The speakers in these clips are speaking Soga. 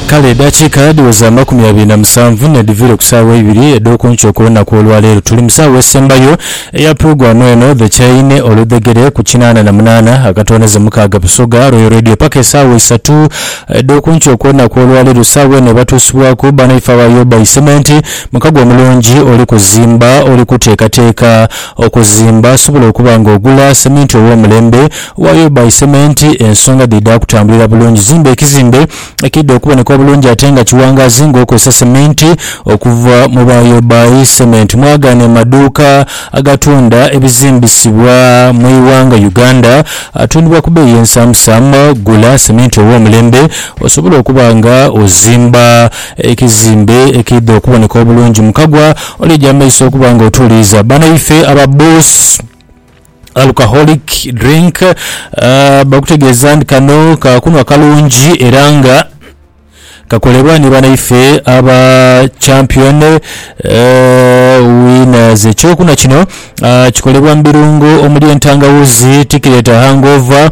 Kale edhakiika dhiweza amakumi abiri na musanvu n'edhiviire ku saawa eibiri edh'oku nkyo ku lunaku olwaleero. Tuli mu saawa esembayo eya pulogulaamu eno dhe kyaine oludhegere ku kinaana na munaana akatooneze mukaaga Busoga Royal Radio paka esaawa isatu edh'oku nkyo ku lunaku olwaleero. Saawa eno ebatuusibwaku banaife aba Yobai Cement. Mukago omulungi oli kuzimba, oli kuteekateeka okuzimba asobola okuba nga ogula seminti ow'omulembe. Waayo bby sementi ensonga dhidha kutambulira bulungi. Zimba ekizimbe ekidha okuboneka obulungi ate nga kiwangaazi nga okozesa sementi okuva mu Waayo bby Cement. Mwagaane mu maduuka agatunda ebizimbisibwa mu ighanga Uganda atundibwa ku bbeeyi ensamusamu. Gula sementi ow'omulembe osobole okuba nga ozimba ekizimbe ekidha okuboneka obulungi. Mukagwa oli egy'amaiso okuba nga otuuliiza banaife aba Bus. Alcoholic drink, bakutegeeza nti kano ka kunhwa kalungi era nga kakolebwa ni banaife aba Champion Winners. Ekyokunhwa kino kikolebwa mu birungo omuli entangawuzi, ti kireeta hangover.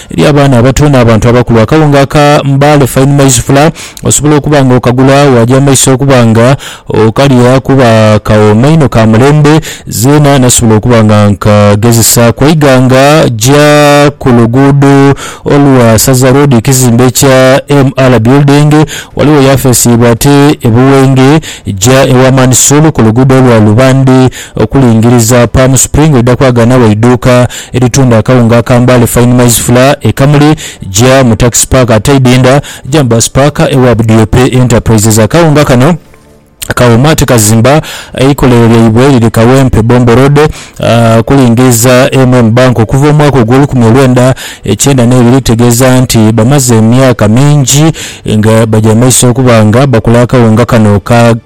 Eri abaana abato n'abantu abakulu, akawunga aka Mbale Fine Maize Flour osobola okuba nga okagula waagya mu maiso okuba nga okalya kuba kawooma inho ka mulembe. Zeena nasobola okuba nga nkagezesa ku eighanga gya ku luguudo olwa Saza Road ekizimbe ekya MR Building ghaligho yafeesi yaibwe ate e Buwenge gya ewa Mansoor ku luguudo olwa Lubande. Okulingiriza, Palm Spring oidha kwaaganagho eiduuka eritunda akawunga aka Mbale Fine Maize Flour e Kamuli. Gya mu Taxi Park Ataidinda, gya mu Bus Park ewa Budiope Enterprises. Akawunga kano kawooma ate kazimba. Eikolero lyaibwe liri Kawempe, Bombo Road. Okulingiriza, MM Bank okuva omwaka ogw'olukumi olwenda ekyenda n'ebiri tutegeeza nti bamaze emyaka mingi nga bagya mu maiso okuba nga bakola akawunga kano ka.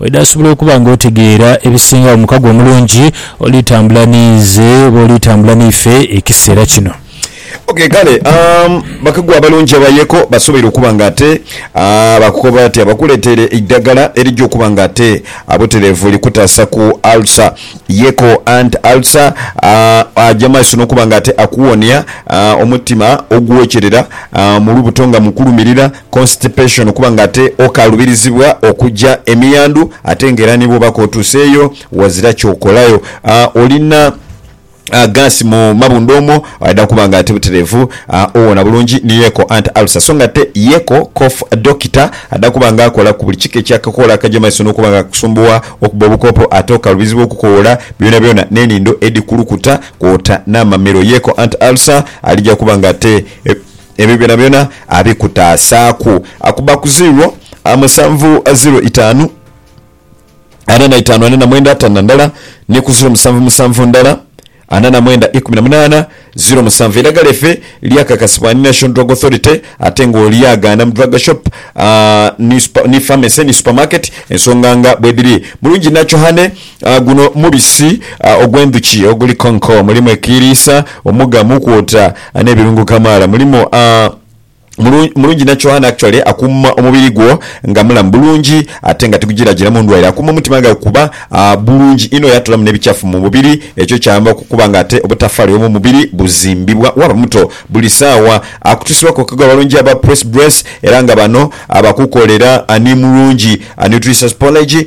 Oidha sobola okuba nga otegeera ebisingagho mu mukago omulungi oli tambula n'inze oba oli tambula n'ife ekiseera kino. Ok, kale bakago abalungi abayeeko basoboire okuba nga ate baakukoba batya bakuleetere eidagala erija okuba nga ate butereevu likutaasa ku ulcer. Yeeko anti ulcer aja mu maiso n'okuba nga ate akuwonia omutima ogwokyerera mu lubuto nga mukulumirira. constipation, okuba nga ate okalubirizibwa okuja emiyandhu ate nga era nibwoba kotuseeyo wazira kyokolayo olina gaasi mu mabundha omwo aidha kuba nga ate buterevu owona bulungi ni yeko anti ulcer so nga ate yeko cough dokita adha kuba nga akola ku buli kika ekyakakola akaja mumaiso nokuba nga kakusumbuwa okubba obukopo ate okalubizibwa okukowola byonabyona nenindho edhikulukuta kwota namamiro yeko anti ulcer alija kuba nga ate Ebyo byonabyona abikutaasaaku akuba ku ziiro musanvu ziiro itaanu ana na itaanu ana na mwenda ataanu na ndala, ni ku ziiro musanvu musanvu ndala ana na mwenda ikumi na munaana ziiro musanvu. Eidagala life lyakakasibwa ni National Drug Authority ate ng'olyagaana mu Drug Shop ni Pharmacy ni Supermarket ensonga nga bwedhiri. Mulungi Nacho Honey. Guno mubisi ogw'endhuki oguli konko. Mulimu ekiiriisa, omuga, muukwota n'ebirungo kamaala. Mulimu mulungi nacho and actually akuuma omubiri gwo nga mulamu bulungi ate nga tigujiragira mu ndwaire. Akuuma omutima gha kuba bulungi inho yatolamu n'ebikyafu mu mubiri ekyo kyamba okukuba nga ate obutafaali bw'omu mubiri buzimbibwa waaba muto buli saawa. Akutusibwa ku bakago abalungi aba Press Dress era nga bano bakukolera ni mulungi nutriceuspology.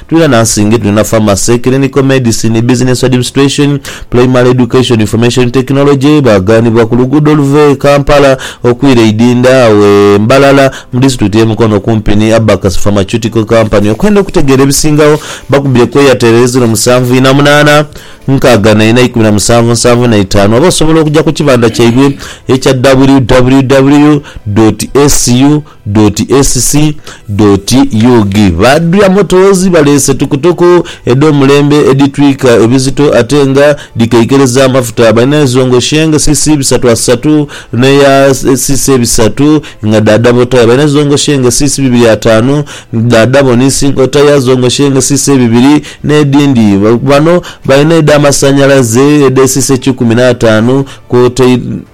Tulina nansinge, tulina pharmacy, clinical medicine, business administration, primary education, information technology. Baaganibwa ku luguudo oluva e Kampala okwira e Idinda agho e Mbalala mu disitulikiti y'e Mukono okumpi ni Abacus Pharmaceutical Company. Okwenda okutegeera ebisingagho bakubire ku Airtel eri ziro musanvu ina munaana, nkaaga na ina ikumi na musanvu nsanvu na itaanu oba osobola okuja ku kibanda kyaibwe ekya www. Asu. Doti SC doti ug. Ba Dria Motors baleese tukutuku edh'omulembe edhitwika ebizito ate nga dhikeikereza amafuta. Balina ezo ngo Sheng CC bisatu asatu n'eya CC ebisatu nga dha Dabo Tyre. Balina ezo ngo Sheng CC bibiri ataanu dha Dabo ni Sinko Tyre zo ngo Sheng CC ebibiri n'edhindi. Bano balina edh'amasanhalaze edh'e CC kikumi n'ataanu kwotaire.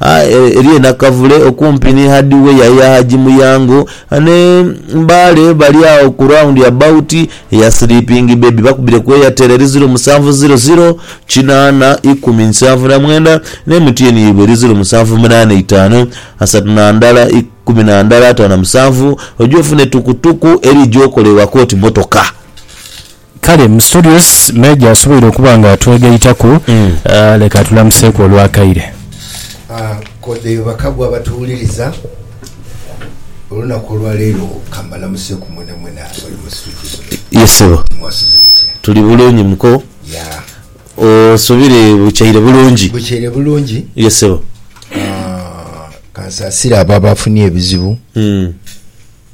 Eriyo e Nakavule okumpi ni hadiweya ya Haji Muyango ne Mbale bali agho ku round about eya Sleeping Baby bakubire ku Airtel eri ziro musanvu ziro ziro kinaana ikumi nsanvu na mwenda ne MTN yaibwe eri ziro musanvu munaana itaanu asatu na ndala ikumi na ndala ataano na musanvu oje ofune tukutuku eri gyokola ewaka oti motoka. Kale Mysterious Major asoboire okuba nga atwegaitaku, leka atulamuseeku olwakaire. Kode bakagwa abatuwuliriza, olunaku olwaleero kambalamuseku mwenamwena abali mu situdio zino. Ye sebo. Mwasuze mutya? Tuli bulungi muko. Yeah. Osubire bukyaire bulungi? Bukyaire bulungi. Ye sebo. Kansaasire abo abafunye ebizibu.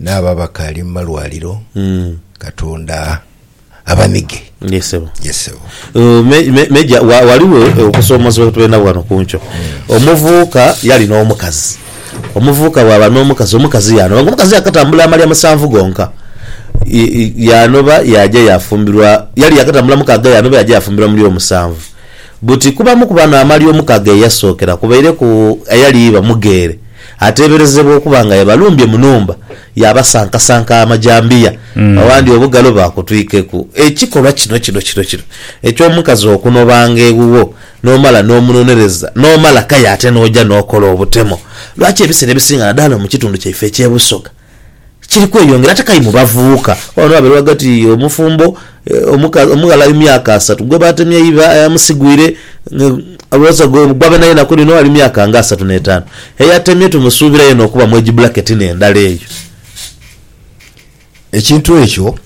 N'abo abakaali mu malwaliro Katonda abanige. Ye ssebo. Ye ssebo. Major ghaligho okusomozebwa kwe tulina ghano ku nkyo. Omuvubuka yali n'omukazi, omuvubuka bwaba n'omukazi, omukazi yaanoba nga omukazi yaakatambula amalya musanvu gonka. Yaanoba yaaja yaafumbirwa, yali yaakatambula mukaaga yaanoba yaaja yaafumbirwa mu ly'omusanvu. Buti kubamu ku bano amalya omukaaga ye yasookera kubaireku eyali iba mugheere. Ateeberezebwa okuba nga yabalumbye mu nhumba yaabasankasanka amajambiya awandi obugalo baakutwikeku. Ekikolwa kino kino kino kino eky'omukazi okunobanga ewuwo n'omala n'omunonereza n'omala kaya ate n'oja n'okola obutemo, lwaki ebiseera ebisinga nadala mu kitundu kyaife eky'e Busoga, kiri kweyongera ate k'aye mu bavubuka. Ghano ghabaire ghagati omufumbo omughala ali mu myaka asatu gwe baatemya eiva ayamusigwire gwa beenayeena ku lino ali mu myaka nga asatu n'etaanu. Eyatemye tumusuubira yeena okuba mu age bracket n'endala eyo. Ekintu ekyo.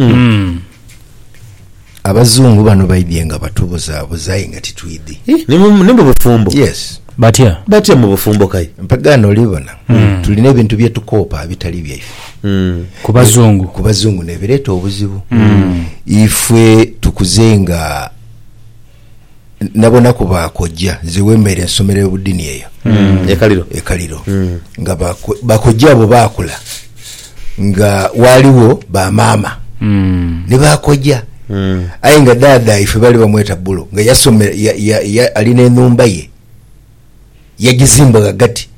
Abazungu bano baidhie nga batubuzabuza aye nga titwidhi. Ih, ni mu- ni mu bufumbo Yes. Batya? batya mu bufumbo kai Mpagaano olibona tulina ebintu bye tukoopa abitali byaife. Ku bazungu. Ku bazungu nebireeta obuzibu. Ifwe tukuze nga nabonaku ba kojja nze wemeere nsomera ebudini eyo mm. ekaliro ekaliro mm. nga bakojja abo bakula nga waliwo ba mama mm. ne bakojja mm. aye nga dada ife bali bamweta bulo nga yasomera ya, ya, ya, alina enumba ye yagizimba gagati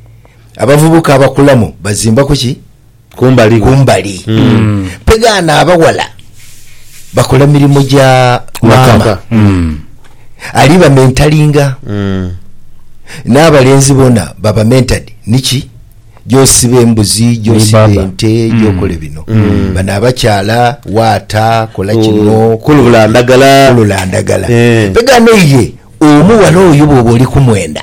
abavubuka abakulamu bazimba kuki Kumbali gho. kumbali pegaana abawala bakola mirimo gya Maka. maka ali bamentalinga n'abalenzi bona baba mentored niki gyosiba embuzi Ni gyosiba baba. ente gyokola bino bano abakyala waata kola kino Kulula ndagala. kulula ndagala Eh. pegaana iye omuwala oyo bwoba oli kumwenda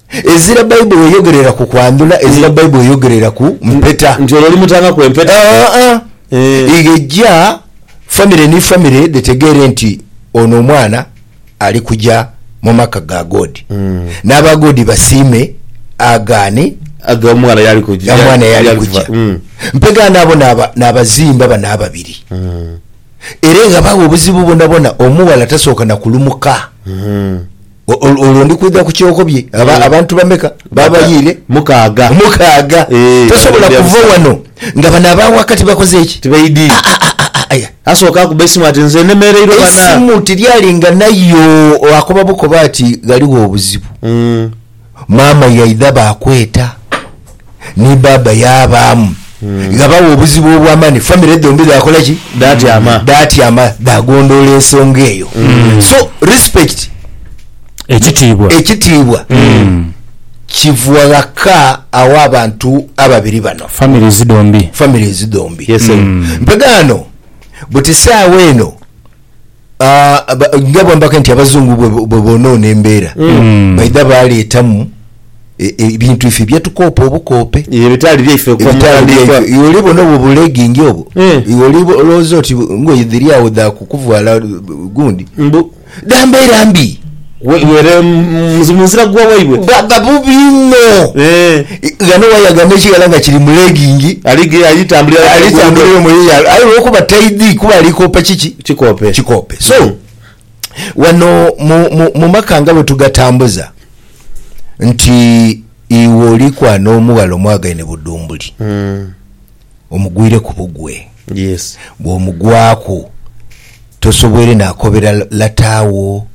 Ezira Baibuli eyogerera ku kwandhula, ezira Baibuli eyogerera ku mpeta. Nti olwo olimutangaku empeta? Aa-a. Ighe eja famire ni famire dhetegeere nti ono omwana ali kuja mu maka ga God. N'aba God basiime, agaane, Aghe omwana y'ali kuja. omwana y'ali kuja. Mpegha n'abo n'abazimba bano ababiri. Era eghabagho obuzibu bwonabwona omughala tasooka na kulumuka. Olwo ndi kwidha ku kyokobye. Aba, abantu bameka baabayiire? Mukaaga. Mukaaga. Eeh, Tosobola bali kuva abasatu. wano nga bano aba waka tibakoze ki? Tibaidhi. Ah, ah, ah, ah, ah, ah. Asooka akuba eisimu ati, Nze nnemeereirwa bana. Eisimu tiryali nga nayo, akoba bukoba ati, Ghaligho obuzibu. Mm. Maama yaidha baakweta ni bbaabba yaabaamu. Ghabagho obuzibu obw'amaani, famire dhombi dhaakola ki? Dhaatyama. Dhaatyama, dhaagondoola ensonga eyo. So, respect, Ekitiibwa. ekitiibwa, kiva ghaka aw'abantu ababiri bano, Families dhombi. families dhombi. Yes, sir. Mpegha ghano buti saawa eno Ah, aba- nga bwambaka nti abazungu bwe- bwe bonoona embeera Mm. baidha baleetamu e- e- ebintu ife byetukoopa obukoope ebitaali byaife ku ebitaali mutandikwa. byaife iwe oli bona obwo bulegingi obwo Eh. iwe oli bo- olowooza oti ngoye dhiri awo dha kukuvwala uh, gundi Mbu, dha mbeera mbi Weere mu nzira gwa waibwe. Bwaba bubi inho. Ghano waya ghano ekighala nga kiri mu legging. Ali tambulira mu luguudo. Aye olwokuba taidhi kuba ali koopa kiki? Kikoope. Kikoope. So, ghano mu maka nga bwetugatambuza nti iwe oliku ano omughala omwagaine budhumbuli. omugwireku bugwe. Yes. Bw'omugwaku tosoboire naakobera lata wo,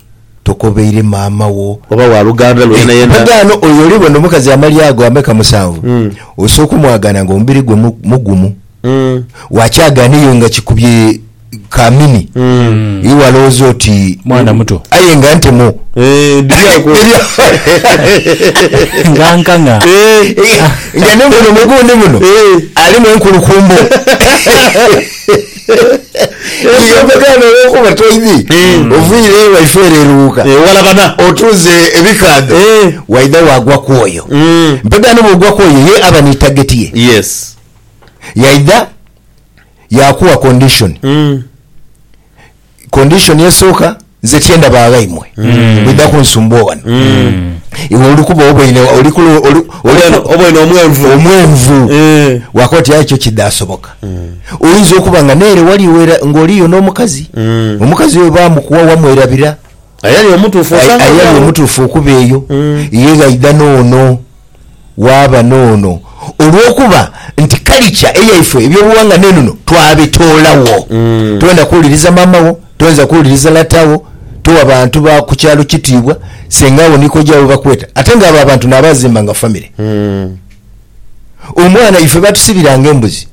tokobeire maama wo. Oba wa luganda lwo yeenayena. Eeh, mpagaano oyo oli bona omukazi amalya ago ameka musanvu, osoka omwagaana ng'omubiri gwe mugumu, wakyagaana eyo nga kikubye ka mini iwe alowooza oti Mwana muto. aye nga ntemo Eh, dhiri ako. Nga nkang'a. Eh, nga ne muno mugundi muno alimu enkulukumbo yeyambagana olwokuba toidhi oviire ewaife ere eruwuka Eh, walabana. otunze ebikaadho Eh. waidha wagwa kwoyo Mm. mpegano bwogwa kwoyo ye aba ni tageti ye Yes. yaidha yakuwa condition mm. condition esoka nze kyendaba aghaimwe mm. mwidha kunsumbua wano mm. iwe olikuba oboine oboine omwenvu omwenvu eh. wakoti aye kyo kidasoboka mm. oyinza okuba nga nere wali wera ngoliyo n'omukazi mm. omukazi oyo bamukuwa wamwerabira ayali omutuufu ayali omutuufu okuba eyo mm. yeghaidha noono waaba n'ono, olw'okuba nti kalicha eyaifwe eby'obughanga n'enono twabitoolagho. Toyenda kuwuliriza maama wo, toyinza kuwuliriza lata wo, towa bantu ba ku kyalo kitiibwa, senga wo ni koja wo bakweta. Ate nga abo abantu n'abaazimba nga famire. Omwana ife baatusibiranga embuzi.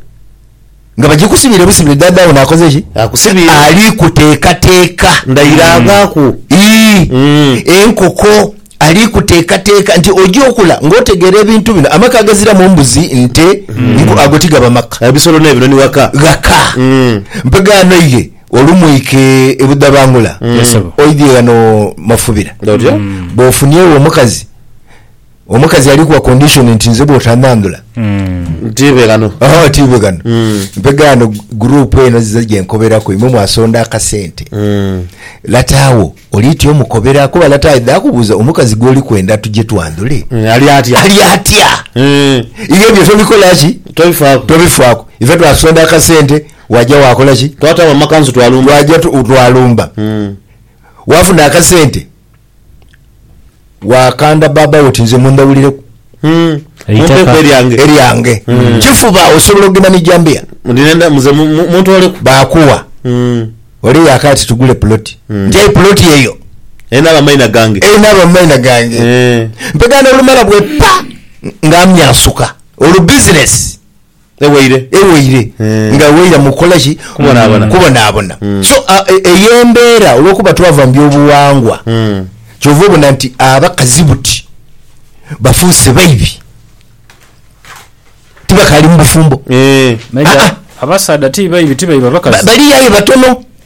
Nga bagikusibire busibire, ddaadha wo n'akoze ki? Akusibire. Ali kuteekateeka. Ndayirangaaku. Ii, Enkoko ali kuteekateeka nti oja okula ng'otegeera ebintu bino. Amaka agaziramu mbuzi, nte, nku, ago ti gaba maka. Ebisolo n'ebinoni ghaka. Ghaka. Mpegaano ye olumwike e Budhabangula oidhie ghano Mafubira. Bw'ofuniewo omukazi. Omukazi ali kuwa condition nti nze bwotanandhula Ntiibe ghano. oh ntiibe ghano. Mpeghe ghano group eno zize gyenkoberaku imwe mwasonda akasente lata agho olitya omukobera kuba lata aidha akubuuza omukazi gwoli kwenda tuje twandhule Mm, Ali atya? ali atya? Mm, Iwe ebyo tobikola ki? Tobifaaku. tobifaaku ife twasonda akasente waja wakola ki Twatawo amakanzu twalumba. twaja tu- twalumba wafuna akasente Waakanda baaba wo oti nze mundhawulireku Mumpeku eryange. eryange. Kifuba osobola okugenda ni jambiya Ndi nenda muze mu- mu- muntooleku. baakuwa. Mm. Ole yaakaya ati tugule puloti. Nti aye puloti eyo Erina abamaina gange. erina abamaina gange. Eh. Mpegana olumala bwe ppa nga amyansuka olubizinesi. Ewaire. Ewaire. Eeh. Nga ewaira mu kukola ki? Kubonabona. Kubonabona. So, eyo embeera olwokuba twava mu byobuwangwa, kyova obona nti abakazi buti bafuuse baibi. Tibakaali mu bufumbo. Eeh. Naye abasaadha ti baibi, ti baiba bakazi. Baliyo aye batono.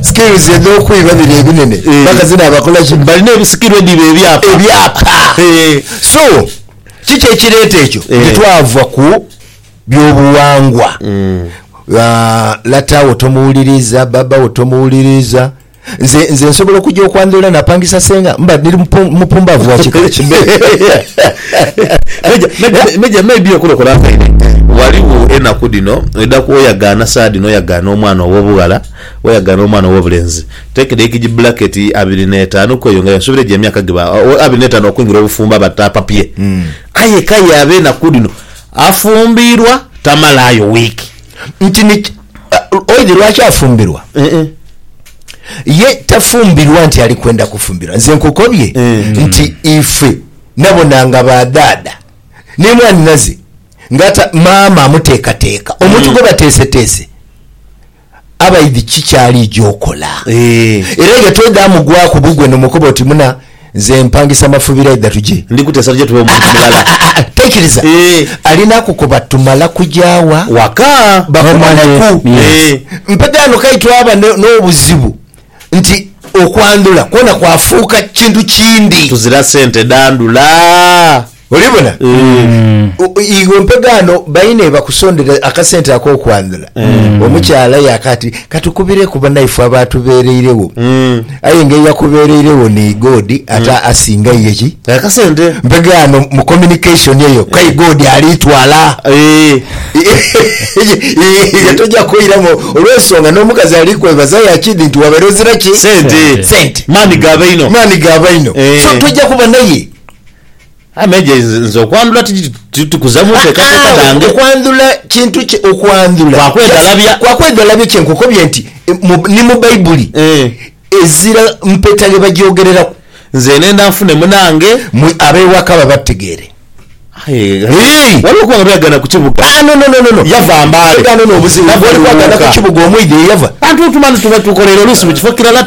Skills edhokwiba bino ebinene paka zino abakola ki? Balina ebisikirwa edhiba ebyapa. Ebyapa so kiki ekireta ekyo nti twava ku byobuwangwa lata wo tomuwuliriza baba wo tomuwuliriza nze nze nsobola okuja okwandhula napangisa senga mba niri mupumbavu wakika ki? Meja may be okulokora nkaire ghaligho enaku dhino oidha kwoyagaana saha dhino oyagaana omwana owobughala Weyaga n'omwana ow'obulenzi, teeka edhaiki gi bbulaketi abiri n'etaanu ku eyo nga y'ensubira egyo emyaka giba abiri n'etaanu okwingira obufumbo aba tapapye. Aye k'aye ab'enaku dhino afumbirwa tamalaayo wiiki. Nti ni ki? Oidhi lwaki afumbirwa? Ye tafumbirwa nti ali kwenda kufumbirwa. Nze nkukobye nti ife nabonanga ba dhaadha ni mwanhinaze nga maama amuteekateeka, omuntu gwe bateeseteese. abaidhi ki ky'aliija okola. Era ye twedhamugwaku bugwe n'omukoba oti, Muna, nze mpangisa mafubiro aidha tuje. Ndi kuteesa tuje tube omuntu mulala. Aa-aa-aa! Taikiriza! Alina kukoba tumala kuja wa? Waka. Bakomaneku. Mpega ghano k'aye twaba n'obuzibu nti okwandhula kwona kwafuuka kintu kindi. Tuzira sente dhandhula. Olibona? O- o- Iwe mpegaano baine bakusondera akasente ak'okwanula. Omukyala yaaka ati katukubireku banaife abaatubeereiregho. Aye nga eyakubeereiregho ni God ate asinga iye ki? Akasente. Mpegaano mu communication eyo kai God aliitwala. Eh. Iwe tojja kwoiramu olw'ensonga n'omukazi ali kwebaza yakidi nti wabaire ozira ki? Sente. Sente. Maani ga baino. Maani ga baino. Eh. So tojja kuba naye. Aye Meja nze okwandhula tikuza mu nteekateeka dhange. Aa-aa, okwandhula kintu ki? Okwandhula. Kwa kwedhalabya. Kwa kwedhalabya, kye nkukobye nti ni mu Baibuli ezira mpeta ghe bagyogereraku. Nze ndhenda nfune munange. Mwe ab'ewaka babategeere. Aye ghaligho okuba nga bweyagaana ku kibuga. Aa-aa, no, no, no, no. Yava Mbale. Ghano n'obuzibu. Nabwo oli kwagaana ku kibuga omwidha eyava. Bantu tumale tube tukoleire oluusi mu kifo kirala.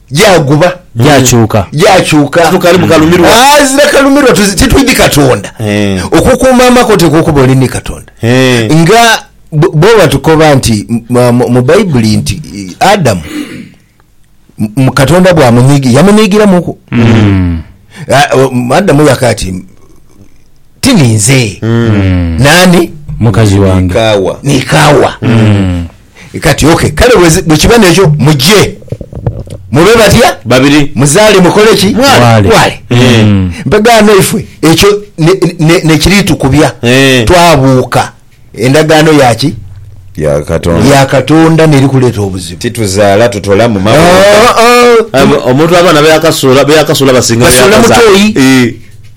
gyaguba, gyakyuka, gyakyuka, ghazira kalumirwa. Titwidhi Katonda okukuuma amakote k'okuba oli ni Katonda. Nga bwe batukoba nti mu Baibuli nti Adamu Katonda bwamunhiigira, yamunhiigiramuku. Adamu yaka ati ti ninze, naani? Mukazi wange. Ni Kaawa. Kati, OK, kale bwe kiba n'ekyo, muje, mube batya? Babiri. Muzaale, mukole ki? Mwale. Mwale. Mpegaano ifwe, ekyo ne, ne, ne kiriitukubya. Twabuuka endagaano ya ki? Ya Katonda. Ya Katonda n'eri kuleeta obuzibu. Tituzaala, tutola mu mabumba. Omuntu abaana be yakasuula, be yakasuula basinga be yakazaa. Basuula mu toyi.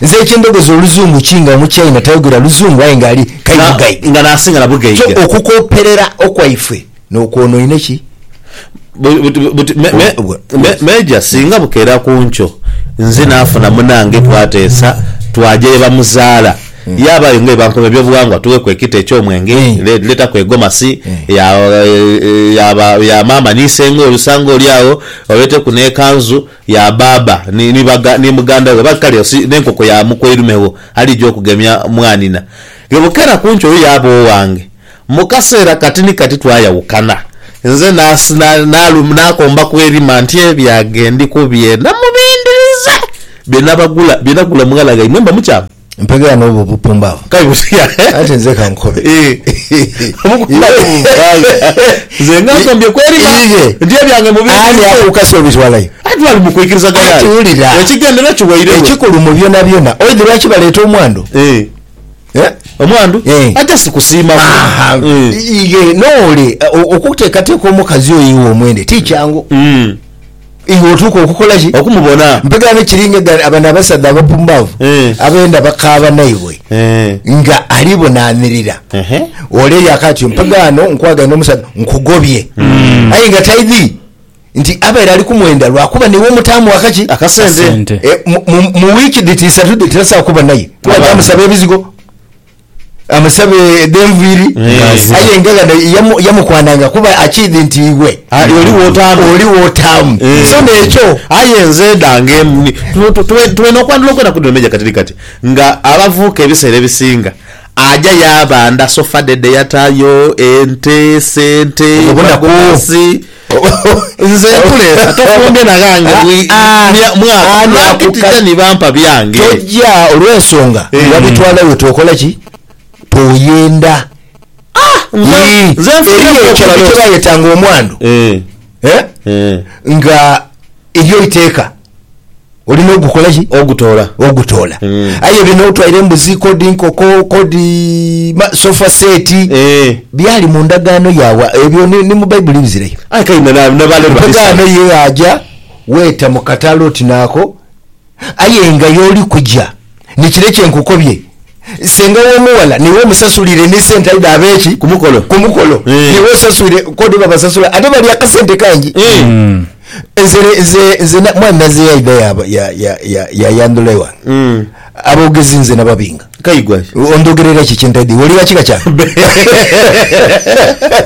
Nze eky'endhogozi oluzungu ki nga omuchaina tayogera luzungu aye nga ali kai Na- bugaiga? nga n'asinga na bugaiga. So okukooperera okwaifwe n'okwonoine ki? Bu- buti- buti- me- me- Obwa- me- Meeja, singa bukeera ku nkyo nze naafuna munange twateesa twaja ye bamuzaala, yaabayo nga ye bankuma ebyobughangwa tugheku ekita eky'omwenge, Mm. le- leetaku egomasi ya ya ba- ya maama ni iseng'o olusa ng'oli agho, oleeteku n'ekanzu, Ya baaba ni, ni baga, ni muganda we, ba, kale osi, n'enkoko ya mukoirume wo alija okugemya mwanina. Ge bukera ku nkyo oyo yaaba owange. Mu kaseera kati ni kati twayawukana. Nze nas, na, nalum, naakomba ku erima nti ebyange ndi ku bye namubindiriza, bye nabagula, bye nagula mughala ghaimwe. Mba mukyaamu. Mpegera n'obwo obupumbaavu. Kale butia? Anti nze ka nkobe. Nze nga nkombye kw'erima nti ebyange mu bye Ani akukase obitwalayo? Anti bali mu kwikirizagana Kati ali wulira. ekigendera kiwairegho. Ekikulu mu byonabyona, oidhi lwaki baleeta omwandu? Eh, Eh? omwandu? Eh. Aja si kusiima kwo. Aha. Eh. Ighe noole, o- okuteekateeka omukazi oyo iwe omwende ti kyangu. Mm. Iwe otuuka okukola ki? Okumubona. Mpegaane kiri nga ghale abano abasaadha abapumbavu abenda bakaaba naibwe nga ali bonaanirira ole eyo akatyo. Mpegaano nkwagaine omusaadha nkugobye aye nga taidhi nti abaire ali kumwenda lwakuba n'iwe omutaamu aka ki? Akasente. Mu wiiki dhiti isatu dhiti tasobola kuba naye kuba tamusaba ebizigo. amusabe dh'enviiri Ng'aze. aye nga ghano yamu- yamukwananga kuba akiidhi nti iwe Aye oli w'otaama. oli w'otaama Eh. so n'ekyo Aye nze edhange em- tu- tu- tube tube n'okwandhula okwena kudhino Meja katili kati nga abavuuka ebiseera ebisinga aja yaabanda sofa dhe dhe yatayo, ente, sente, Obwo bunaku. magomasi. Nze nkuleeta, tofumbye na ghange mwaka, n'akutita ni bampa byange. Tojja olw'ensonga wabitwala we tookola ki? Tooyenda. Eriyo ekintu kye bayetanga omwandu nga elyo iteeka. olina ogukola ki ogutoola ogutoola Mm. aye bino otwaire embuzi kodi nkoko kodi ma sofa set Eh. byali mu ndagaano yaabwe ebyo ni, ni mu baibuli bizireyo Aye kale na- na- nabaleero bali Mpagaano sawa. ye aja weta mu katale oti naako aye nga y'oli kuja Ni kire kye nkukobye, senga w'omughala niwe omusasulire ni sente aidha aba eki? Ku mukolo. Ku mukolo. Niwe osaswire kodi babasasula ate balya akasente kangi. Nze, nze, nze na, mwami Naze yaidha yaaba, ya, ya, ya, yayandhula ewange. Aboogezi nze nababinga. Kaigwa ki? Ondhogerera ki kye ntaidhi? Wulira kika kyange.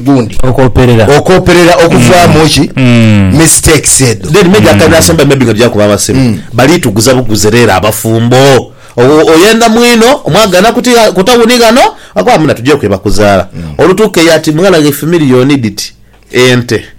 gundi okooperera okooperera okuvaamu ki mistakes edho. Then maybe akaire asembayo maybe nga tuja kuba abasiru bali tuguza buguzi rero abafumbo o oyenda mwino mwagana ku ti ku tawuni ghano akoba muna tuje kwe bakuzala olutuka eyo ati mughala ghe fimiliyo oniditi ente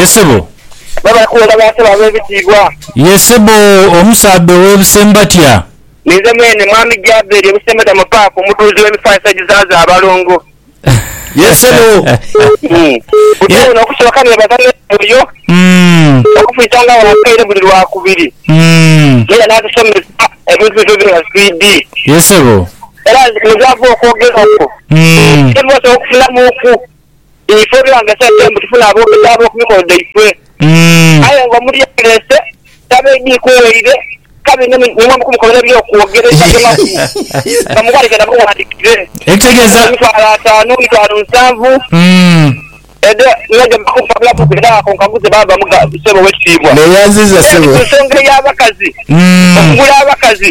Ye sebo. Babakuwona ba ntebe ab'ebitiibwa. Ye sebo, omusaadha ow'ebusembatia. Ninze mwene, Mwami Jaberi, ebusembatia mu paaka, omudhuuzi w'emifaanisa egizaaza abalongo. Ye sebo. Butyo buno okusooka neebaza n'omwoyo okufisanga agho akaire buli Lwakubiri, ng'era n'atusomesa ebintu bino byona swidi. Ye sebo. Era nze nze ava okwogera okwo, sebo osobola okufunamuuku. Ife twanga sente mbu tufune aboogezi ab'oku mikolo dhaifwe. Aye nga omuntu yeereese taba idhi ku waire, kabi inho ni mwe mukumukobera eby'okwogera ebitali mafu nga mughanike na bughandhikire. Ekitegeza. Emitwalo ataanu, emitwalo nsanvu, edho niyo gye bakumpabulaku ku era ako nkaguze baaba muga, Ssebo Oweekitiibwa. Neeyanziza Then ssebo. ku nsonga ey'abakazi, okugula abakazi.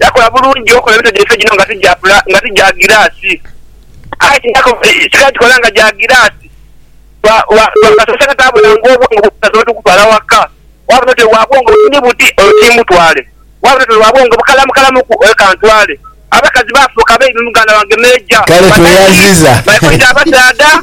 Yakola bulungi okola emito gyaife gino nga ti gya giraasi. Aye singa gikola nga gya giraasi, bwakasoosa nga taabula ng'obwongo bw'omusaadha otukufaala waka. Bwaba n'otwe bwa bwongo buti buti, oyo tiimutwale. Bwaba n'otwe bwa bwongo bukalamu kalamuku, oyo kantwale. Abakazi baafuuka baibi muganda wange Meeja. Kale tweyaziza. Baikoiza abasaadha.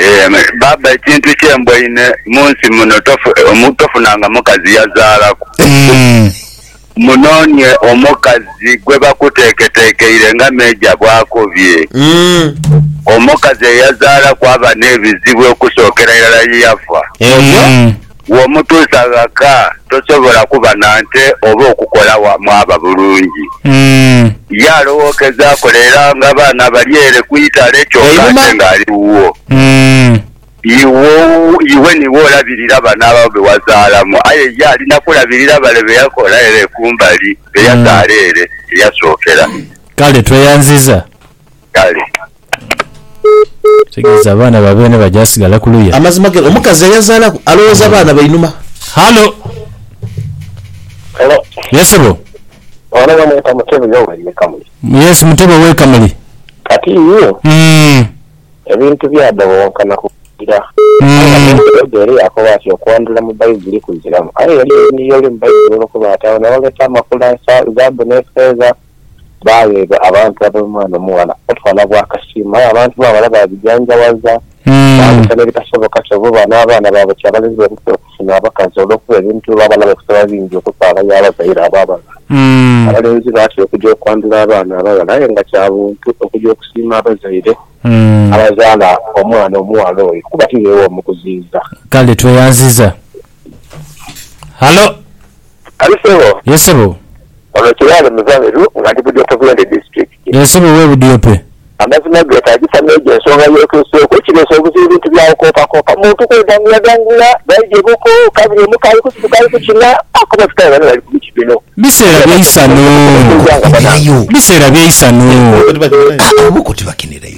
Eeh baaba ekintu kyemboine munsi muno tofunanga mukazi yazaalaku munoonie omukazi gwebakuteeketeekeire nga Major bwakobye omukazi eyazaalaku aba nebizibu okusookera irala yeyafa. Bw'omutuusa ghaka, tosobola kuba na nte oba okukola wamwaba bulungi. Ye alowookeza akolera nga baana bali ere ku itale kyoka ate ng'ali wuwo. Iwe niiwe olabirira baana abo be wazaalamu, aye ye alina kulabirira bale be yakola ere ku mbali, be yazaala ere eyasookera. Kale tweyanziza. kale. Ekitegeza abaana ba beene bajasigala kuluya. Amazima gene omukazi eyazalaku alowoza baana bainuma. Hallo. Hello. Yes sebo. Ono bamweta Mutebe Yoweri ye Kamuli. Yes Mutebe owe Kamuli. Kati Mm. ebintu byadhobonkana ku kugira. Mm. Yobu era yakoba ati okwandhula mu Baibuli kuziramu. Aye eriyo ebintu byoli mu Baibuli olokoba ati agho nawo oleta amakula, zaabu n'efeeza. baagheebwa abantu ab'omwana omughala obutwala bw'akasiimo. Aye abantu b'abaghala baabijanjawaza, baabisa n'ebitasoboka. Kyova oba n'abaana baabo kyabalema emikisa okufuna abakazi olw'okuba ebintu oba abana baifo biba bingi okutwala ya bazaire abo abaghala. Abalenzi batera okuja okwandhula abaana abaghala aye nga kya buntu okuja okusiima abazaire abazaala omwana omughala oyo kuba ti beewa omukuziiza. Kale tweyanziza. Halo. Hali sebo. Yes sebo. Ono Kiraale Muzamiru nga ndi Budiope Bulende District. Eeh sebo owe Budiope. Amazima getagisa meejo ensonga y'otuuseeku ekireese obuzibu bintu bya kukoopakoopa muntu kwedanguyadangula baidhye buko kabiri omuka ali kusituka ali kukina paka oba tutayo bano bali ku miti bino Biseera bya isanhu. Biseera bya isanhu. Abo buko tibakinirayo.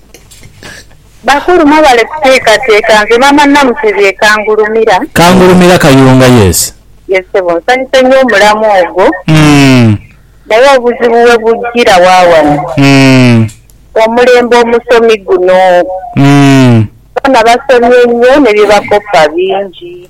Bakulu mwebale kuteekateeka. Nze maama Namutebi e Kangulumira. Kangulumira Kayunga yes. Yes sebo nsanyuse nyo omulamwa ogwo naye obuzibu webujjira wawano omulembe omusomi guno bona basomye nyo nebyebakoppa bingi.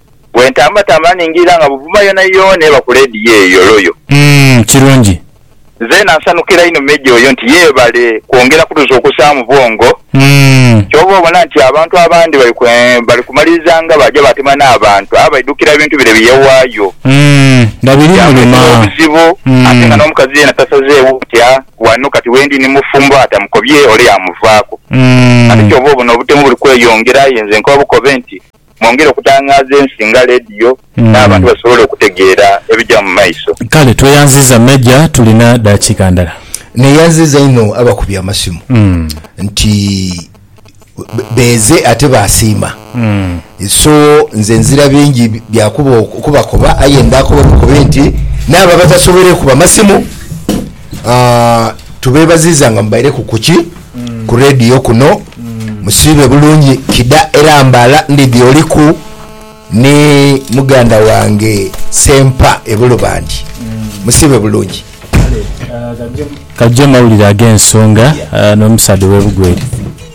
Bwe ntambatamba ningirira nga buvuma yoonayoona eba ku leediyo eyo, Loyo. Umm, kirungi. Nzeena nsanukira inho Meja oyo nti yeebale kwongera kutuzuukusaamu bwongo. Umm. Kyova obona nti abantu abandi bali ku, bali kumaliriza nga baaja baatema n'abantu aye baidhukira bintu bire bi yawaayo. Umm, nga birimuluma. Byamuleetera obuzibu ate nga Umm. n'omukazi yeena tasazeewo nti a, wano kati wendi ni mufumbo atamukobye ole yaamuvaaku. Umm. Kati kyova obona obutemu buli kweyongera aye nze nkoba bukobe nti, mwongere okutangaaza ensi nga leediyo n'abantu basobole okutegeera ebija mu maiso. Kale tweyanziza Major tulina dakiika ndala. Neyanziza inho abakubi amasimu nti beeze ate baasiima so nze nzira bingi byakuba okubakoba aye ndaakoba bukobi nti n'abo abatasoboire kuba masimu Aah tubebaziza nga mubaireku kuki ku radio kuno musiibe bulungi kida era mbala ndidhi oliku ni muganda wange sempa e bulubandi musiibe bulungi. Kale kajje mawulire agensonga nomusaadha owe bugweri.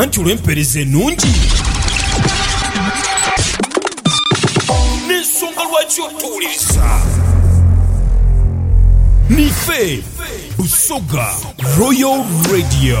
Anti olw'empeereza enungi n'ensonga lwaki otuwuliriza, nife Busoga Royal Radio.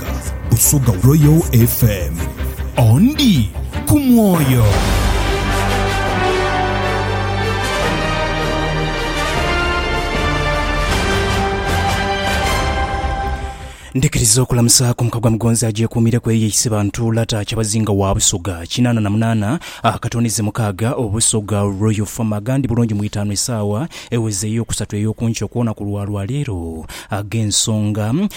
Africa Busoga Royal FM ondi ku mwoyo Ndikiriza okulamusa ku mukagwa mugonzi agyekuumire ku eyo eyise bantu lata kyabazinga wa Busoga kinaana na munaana akatondeze mukaaga Obusoga Royal Farm agandi bulungi mu itaanu esaawa eweze ey'okusatu ey'okunkyo kwona ku lwa lwaleero ag'ensonga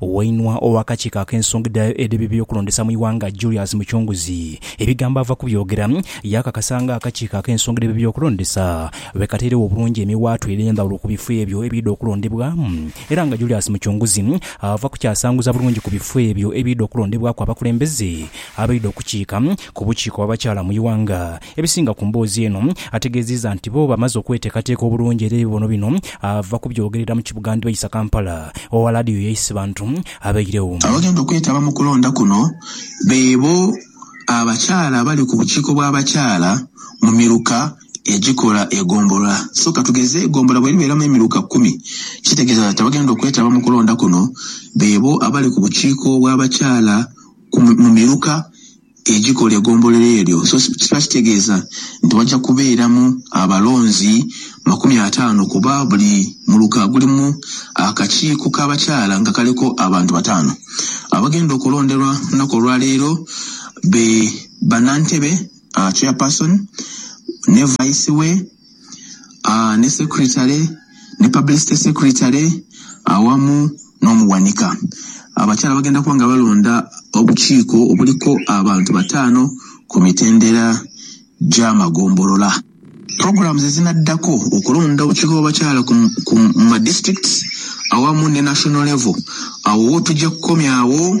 Wainua ow'akakiiko ak'ensonga edh'eby'okulondesa mu ighanga, Julius Muchunguzi, ebigambo ava kubyogera, yaakakasa nga akakiiko ak'ensonga edh'eby'okulondesa bwe katairegho obulungi emiwaatwa edh'endhawulo ku bifo ebyo ebiidha okulondebwamu era nga Julius Muchunguzi ava kukyasanguza bulungi ku bifo ebyo ebiidha okulondebwaku abakulembeze abaidha okukiika ku bukiiko bw'abakyala mu ighanga Ebisinga ku mboozi eno ategeziiza nti bo bamaze okweteekateeka obulungi era ebibono bino ava kubyogerera mu kibuga Ndbaisa, Kampala owa Laadiyo ya Isibantu abairegho. Abagenda okwetaba mu kulonda kuno beebo abakyala abali ku bukiiko bw'abakyala mu miruka egikola egombolola. So katugeze egombolola bweribeeramu emiruka kumi kitegeeza nti abagenda okwetaba mu kulonda kuno beebo abali ku bukiiko bw'abakyala ku mu miruka egikola egombolero eryo so kiba kitegeeza nti waja kubeeramu abalonzi makumi ataano kuba buli muluka gulimu akakiiko ka bakyala nga kaliku abantu bataano. Abagenda okulonderwa ku lunaku olwa leero be Banantebe, Chairperson ne Vice we. aa, ni secretary, ni publicity secretary awamu n'omughanika. Abakyala bagenda kuba nga balonda obukiiko obuliku abantu bataano ku mitendera gy'amagombolola. Programs ezinaddako okulonda obukiiko bw'abakyala ku ku mu ma districts awamu ne national level, awo wo tugya kukomya agho.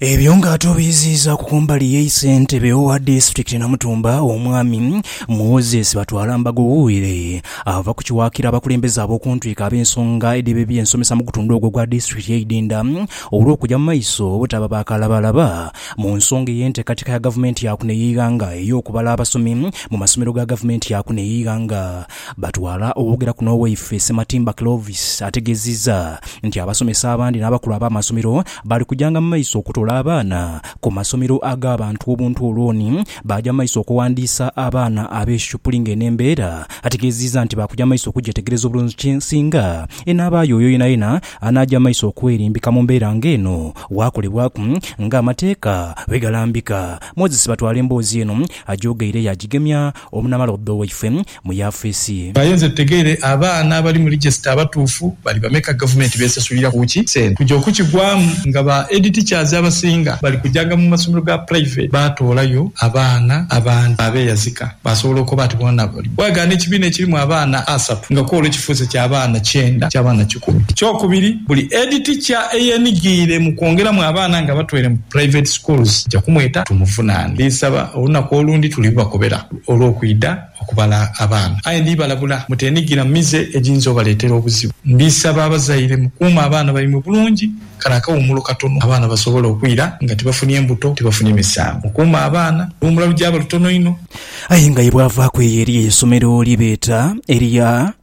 Ebyo nga atubiiziizaaku ku mbali ye Ssentebe owa disitulikiti Namutumba Omwami Moses Batwalambago Wire ava ku kiwaakira abakulembeze ab'okuntwiko ab'ensonga edheba eby'ensomesa mu gutundhu ogwo ogwa disitulikiti ye Idinda olw'okugya mu maiso obutaba ba kalabalaba mu nsonga ey'enteekateeka ya gavumenti ya kuno ey'eighanga ey'okubala abasomi mu masomero ga gavumenti ya kuno ey'eighanga Batwala okwogera kuno owaife Ssematimba Clovis ategeziza nti abasomesa abandi n'abakulu ab'amasomero bali kujanga mu maiso okutola abaana ku masomero ag'abantu obuntu olwoni baaja mu maiso okuwandiisa abaana ab'eshupuli ng'eno embeera ategeziza nti baakuja mu maiso okugyetegereza obulungi singa enaabaayo oyo yenayena anaaja mu maiso okwerimbika mu mbeera ng'eno waakolebwaku ng'amateeka bwegalambika. Moses Batwala emboozi eno agyogeire yaagigemya Omunamalodha owaife mu yafeesi ye. Aye nze tutegeere abaana abali mu register abatuufu bali bameka, gavumenti besasulira ku ki sente kuja okukigwaamu nga ba head teachers abasinga bali kujanga mu masomero ga private batoolayo abaana abandi abeyazika basobola okoba nti boona bali. Bwagaana ekibiina ekirimu abaana asatu nga kwolwo kifuuse kya baana kyenda kya baana kikumi. Ekyokubiri buli head teacher eyenigiire mu kwongeramu abaana nga batweire mu private schools nja kumweta tumuvunaane. Ndinsaba. Olunaku olundi tulibubakobera olw'okwidha okubala abaana. Aye ndibalabula muteenhigira mu mize egiyinza obaleetera obuzibu. Ndisaba abazaire mukuume abaana baimwe bulungi kale akawumulo katono abaana basobole okwira nga tibafunye mbuto, tibafunye misango. Mukuume abaana, oluwumula lugyaba lutono inho. Aye nga ye bwavaaku eyo eriyo eisomero lye beeta erya.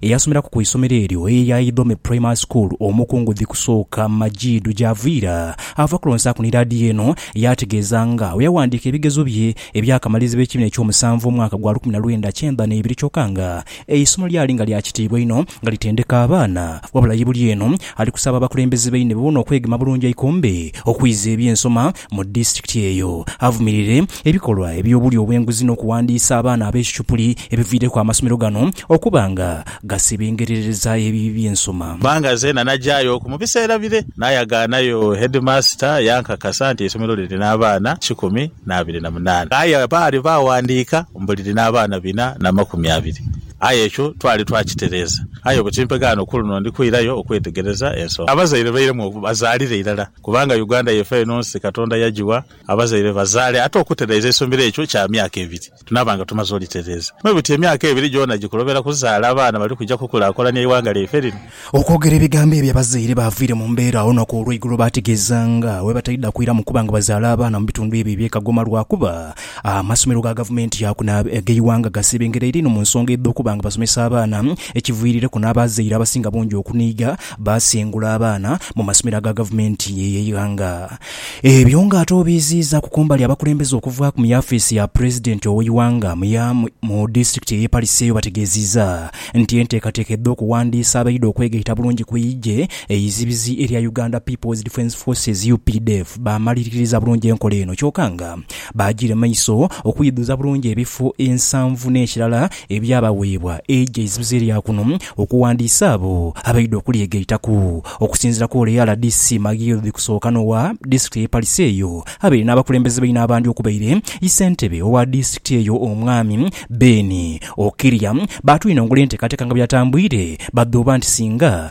Eyasomeraku ku isomero eryo eya Idhome Primary School omukungu dhikusooka Majidu Javiira ava kulonsaaku ni laadiyo eno yaategeeza nga bwe yawandiika ebigezo bye eby'akamalizibwa ekibiina eky'omusanvu omwaka gwa lukumi na lwenda kyenda n'ebiri kyoka nga eisomo lyali nga lya kitiibwa inho nga litendeka abaana wabula ye buli eno Ali kusaba abakulembeze baine boona okwegema bulungi eikombe okwiza eby'ensoma mu disitulikiti eyo, avumirire ebikolwa eby'obulyo obw'enguzi n'okuwandiisa abaana ab'ekicupuli ebiviireku amasomero gano okuba nga gasebengerereza ebibi by'ensoma. Bbanga ze nanagyayo oku mu biseera bire nayagaanayo heedimaasita yankakasa nti eisomero liri n'abaana kikumi n'abiri na munaana aye baali baawandiika mbu liri n'abaana bina na makumi abiri aye ekyo twali twakitereeza. Aye ku kimpegho ano ku luno ndi kwirayo okwetegereza ensonga abazaire bairemu oku bazaalira irala kubanga Uganda yaife eno nsi Katonda yagiwa abazaire bazaale ate okutereeza eisomero ekyo kya myaka ebiri tunaaba nga tumaze olitereeza mwe buti emyaka ebiri gyona gikulobera kuzaala abaana bali kuja kukulakulania eighanga lyaife lino. Okwogera ebigambo ebyo abazaire baaviire mu mbeera agho olunaku olweigulo baategeeza nga bwe bataidha kwiramu kuba nga bazaala abaana mu bitundu ebyo eby'e Kagoma lwakuba Amasomero ga gavumenti yaaku n'ag'eighanga gasebengeraire inho mu nsonga edh'okuba nga basomesa abaana ekiviirireku n'abazaire abasinga bungi okuniiga baasengula abaana mu masomero aga gavumenti ey'eighanga. Ebyo ng'ate obiiziizaaku kumbali abakulembeze okuvaaku mu yafiisi ya Pulezidenti ow'eighanga mu disitulikiti ey'e Pariseyo bategeeziiza nti enteekateeka edh'okuwandiisa abaidha okwegaita bulungi ku eigye eizibizi erya Uganda People's Defence Forces, updf, baamaliriririza bulungi enkola eno kyoka nga Baagira maiso okwidhuza bulungi ebifo ensanvu n'ekirala ebyabaweebwa eigye eizibizi erya kuno okuwandiisa abo abaidha okulyeghaitaku. Okusinziira ku ole rdc Maghiildh Kusookanowa, disitulikiti ey'e Pariso eyo abaire n'abakulembeze baine abandi okubaire ssentebe owa disitulikiti eyo Omwami Ben Okiria baatwinongula enteekateeka nga bweyatambwire badhooba nti singa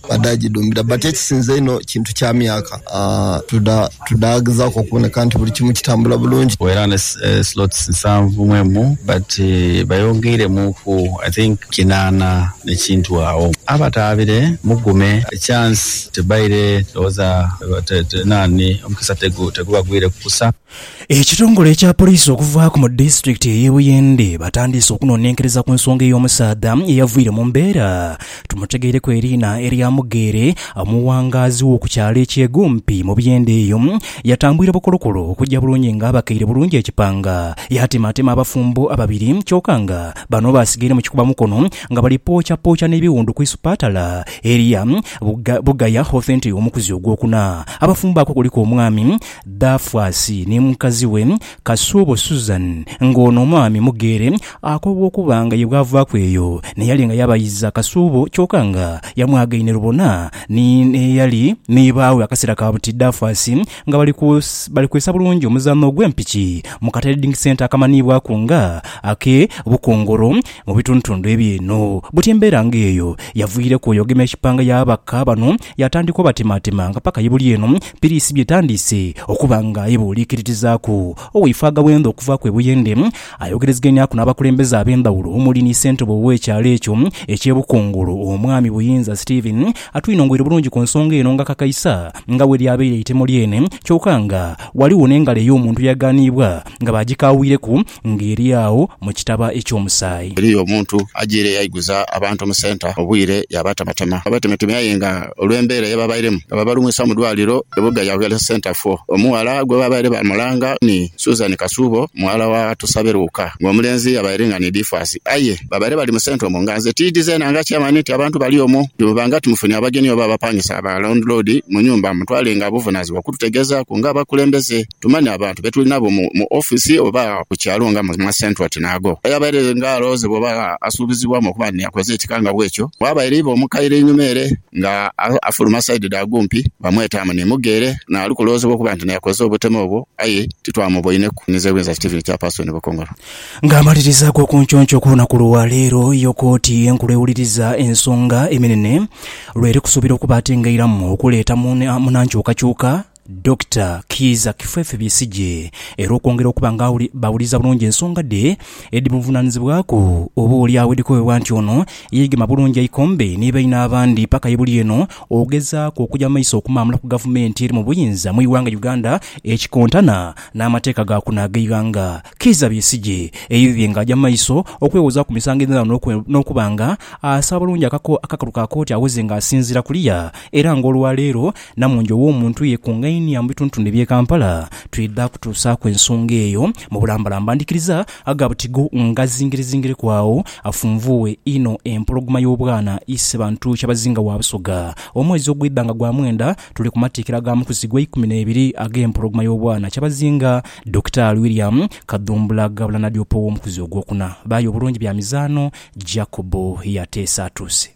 Bada gidhumbira but ekisinze einho kintu kya myaka tudhagezaaku okuboneka nti buli kimu kitambula bulungi. Era ne slots nsanvu mu emu but bayongeiremuuku I think kinaana ne kintu agho. Abataabire mugume chance tebaire ndhowooza nani omukisa tegubagwireku kusa. Ekitongole ekya poliisi okuvaaku mu disitulikiti ey'e Buyende batandiise okunonenkereza ku nsonga ey'omusaadha eyavwire mu mbeera tumutegeire ku eriina erya Mugeere omuwangaazi w'oku kyalo eky'e Gumpi mu Buyende eyo yatambwire bukolokolo okujja bulungi nga abakeire bulungi ekipanga yatematema abafumbo ababiri kyoka nga bano basigaire mu kikuba mukono nga bali pooca pooca n'ebiwundu ku isupatala erya Bugaya Hothenti omukuzi ogwokuna abafumbo ako kuliku omwami Dafwasi ni mukazi we Kasuubo Susan nga ono omwami mugheere akobwa okuba nga ye bwavaaku eyo n'eyali nga yabayiza Kasuubo kyoka nga yamwagaine lubona ni n'eyali ni baawe akaseera ka buti Dafwasi nga bali ku bali kwesa bulungi omuzaano ogw'empiki mu katreding centre akamanhiibwaku nga ake Bukongoro mu bitundutundu eby'eno. Buti embeera nga eyo yaviireku oyo ogema ekipanga y'ababaka bano Yaatandika obatimaatima nga paka ye buli eno piriisi by'etandiise okuba nga ebuuliikiririzaaku. Owaifo Agawendha okuvaaku e Buyende ayogerezegeniaku n'abakulembeze ab'endhawulo omuli ni Ssentebe ow'ekyalo ekyo eky'e Bukungulu, Omwami Buyinza Stephen atwinongoire bulungi ku nsonga eno ng'akakaisa nga bwe lyabaire eitemo lyene kyoka nga ghaligho n'engalo ey'omuntu eyaghaniibwa nga baagikaawuireku Nga eri agho mu kitaba eky'omusaayi. Eriyo omuntu ajiire yaiguza abantu mu centre obwire yaabatematema. Babatemeteme aye nga olw'embeera ye baabairemu nga babalwisa mu dwaaliro Ebuga ya Health Centre fo. Omughala gwe baabaire bamulanga ni Susan Kasuubo mughala wa Tusabe Luuka ng'omulenzi yabaire nga ni Difaasi aye baabaire bali mu centre omwo nga nze tiidi zeena nga chairman nti abantu bali omwo bwemuba nga timufunye abagenyi oba abapangisa ba landlord mu nyumba mutwale nga buvunaazibwa okututegeezaaku ng'abakulembeze. Tumanha abantu be tuli nabo mu ofisi oba ku kyalo nga mu masenta oti n'ago. Aye abaire nga alowoozebwa oba asuubizibwamu okuba nti yakoze ekika nga bw'ekyo, bwabaire iva omu kaire einhuma ere nga afuluma saidi dha Gumpi, bamwetaamu ni Muga ere n'ali kulowoozebwa okuba nti n'akoze obutemu obwo aye titwamuboineku, Mwinza Ewinza Steven Kyapaasoni Bukongolo. Nga amaliriza ag'okunconco ku lunaku lwa leero yo kooti enkulu ewuliriza ensonga eminene lw'eri kusuubira okuba ate ng'eiramu okuleeta mu nhankyukakyuka, Dokita Kiiza Kifefe Besigye era okwongera okuba nga bawuliza bulungi ensonga dhe edhimuvunaanizibwaku oba oli agho edhikowebwa nti ono yeegema bulungi eikombe ni baine abandi paka ye buli eno okugezaaku okuja mu maiso okumaamula ku gavumenti eri mu buyinza mu ighanga Uganda ekikontana n'amateeka ga kuno ag'eighanga. Kiiza Besigye eidhidhie nga aja mu maiso okwewoza ku misango edh'endhaghulo n'okuba nga asaba bulungi akakalu ka kooti awoze nga asinziira kuliya era nga olwaleero Namungi ow'omuntu yekungainia mu bitundutundu eby'e Kampala twidha kutuusaaku ensonga eyo mu bulambalamba. Ndhikiriza aga buti go ngazingirezingireku agho afunvuughe inho empologoma y'obwana ise bantu Kyabazinga wa Busoga. Omwezi ogwidha nga gwa mwenda tuli ku matikkira ga mukuzi gwa ikumi n'ebiri ag'empologoma y'obwana Kyabazinga Dokitaali William Kadhumbula Gabula Nadiopa ow'omukuzi ogwokuna. Bayo Bulungi bya mizaano Jacob yateesa atuuse.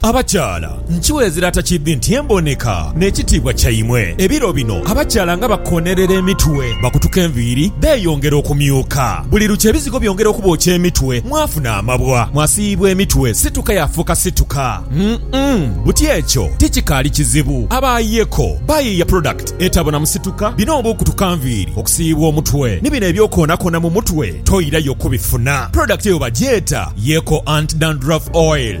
Abakyala, nkiweezera atakiidhi nti emboneka n'ekitiibwa kyaimwe. Ebiro bino abakyala nga bakoonerera emitwe, bakutuka enviiri, beeyongera okumyuka. Buli lukya ebizigo byongera okubookya emitwe, mwafuna amabwa, mwasiiyibwa emitwe, situka yaafuuka situka. Umm, buti ekyo tikikaali kizibu. Abaayeeko bayiiya product etabonamu situka, bino oba okutuka nviiri, okusiiyibwa omutwe, ni bino eby'okwoonakoona mu mutwe, toirayo kubifuna. Product eyo bagyeta Yeeko Anti-Dandruff Oil.